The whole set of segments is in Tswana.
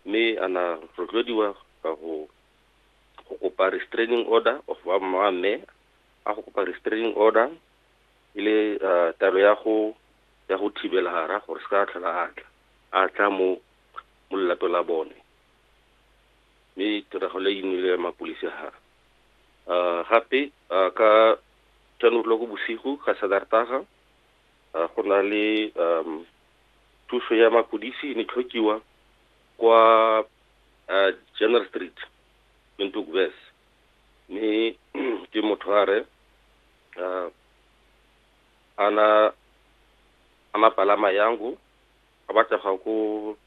mme a na rotloediwa ka go go kopa restraining order of ba mma mme a go kopa restraining order e le uh, taelo ya go ya go thibela hara gore se ka tlhola a tla a tla mo mo lelato la bone mme tiragalo e nnile ya mapodisi ha uh, gape uh, ka ten o'clock bosigo ka sadartaga uh, go na le um, thuso ya mapodisi e ne tlhokiwa kwa uh, Jenner Street Windhoek West mme ke motho a re uh, ana ana palama yangu a batla ga ko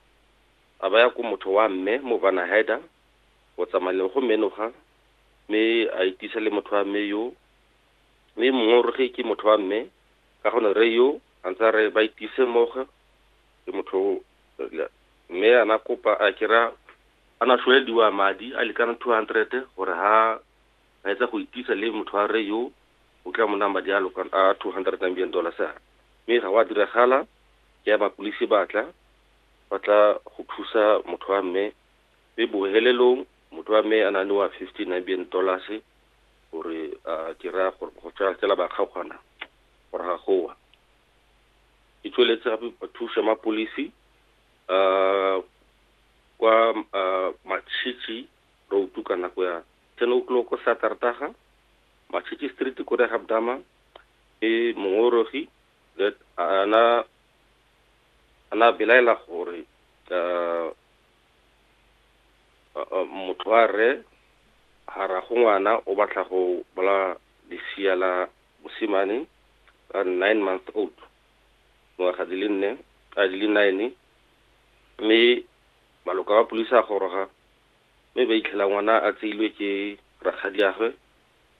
a baya ko motho wa mme mo bana haida go tsamayeng go menoga mme a itisa le motho wa mme yo mme mongwe o roge ke motho wa mme Ka gone rre yo a ntse a re ba itise mmogo le motho o mme a na kopa a kira a na shwelediwa madi a lekana 200 gore ha a etsa go itisa le motho wa rre yo o tla mo nang madi a lokana a 200 Namibian dollars a mme ga wa diragala ke ya mapulisi batla ba tla go thusa motho wa mme mme bohelelong motho wa mme a na newa 50 Namibian dollars gore a ke raya gore go tsaya fela ba kgaogana gore ga goa e tsweletse gape ba thusa mapolisi um kwa matšhitšhi road ka nako ya ten o'clock saterdaga matšhitšhi street ko re gabdama e mongorogi ana ana belaela gore um motlware hara go ngwana o batla go bola lesia la mosimane ka nine month old ngwaga di le nne a di le nine mme maloka wa polisi a goroga mme ba itlhela ngwana a tseilwe ke rakgadiagwe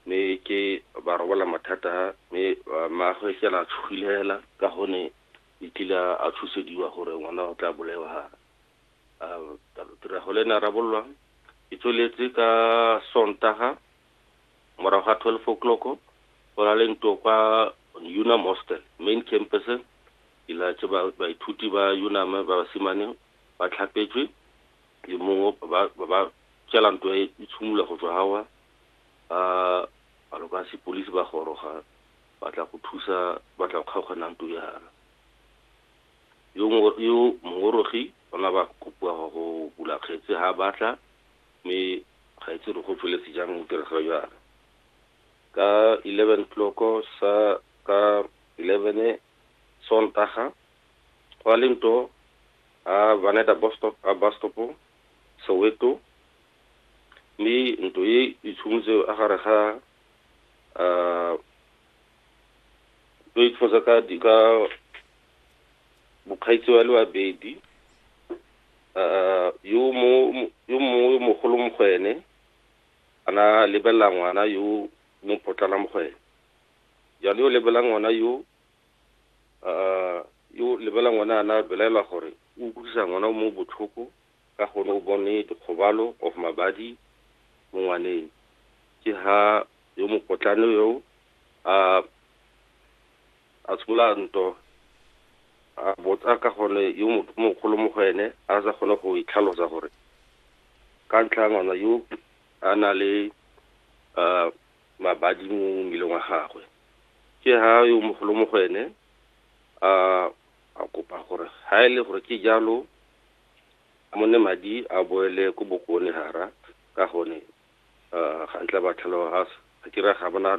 mme ke ba robola mathata mme maagwe fela a tshogile hela ka gone e tlile a tshosediwa gore ngwana o tla bolewa tirago le na rabololwa e tsweletse ka sontaga morago ga 12 o'clock go na le nto kwa unam hostel main campus ilatse baithuti ba unam ba basimane ba tlhapetswe le mongwe ba tsela nto e tshimolola go tswa gawa ba balo ka sepolisi ba goroga batla go thusa batla go kgaogana nto yana Yo ngo- yo mongorogi o na ba kopiwa go go bula kgetse ha a batla mme ga itse re go tsweletse jang o dira ga jalo ka 11 tloko sa ka 11 sontaga go a le nto a vaneta bostop a bastopo soweto mme nto e itshumotse a gare ga ah, lo itlhosa ka di- ka mokgaitsi wa le babedi Ah, yo mo mo- yo mongwe yo mogolo mo go ene ana lebelela ngwana yo mo potlana mo go ene jalo yo lebelela ngwana yo ah, yo lebelela ngwana ana belaelwa gore o utlwisa ngwana o mo botlhoko ka gore o bone dikgobalo of mabadi mo ngwaneng. Ke ha yo mokotlane yo a a tshola nto a botsa ka gone yo mogolo mo go ene a sa kgone go itlhalosa gore ka ntlha ngwana yo a na le um mabadi mo mmeleng wa gagwe. Ke ha yo mogolo mo go ene a a kopa gore ha e le gore ke jalo a mo ne madi a boele ko bokone hara ka hone ga ntla ba tlhaloga ga se ga kira ga bona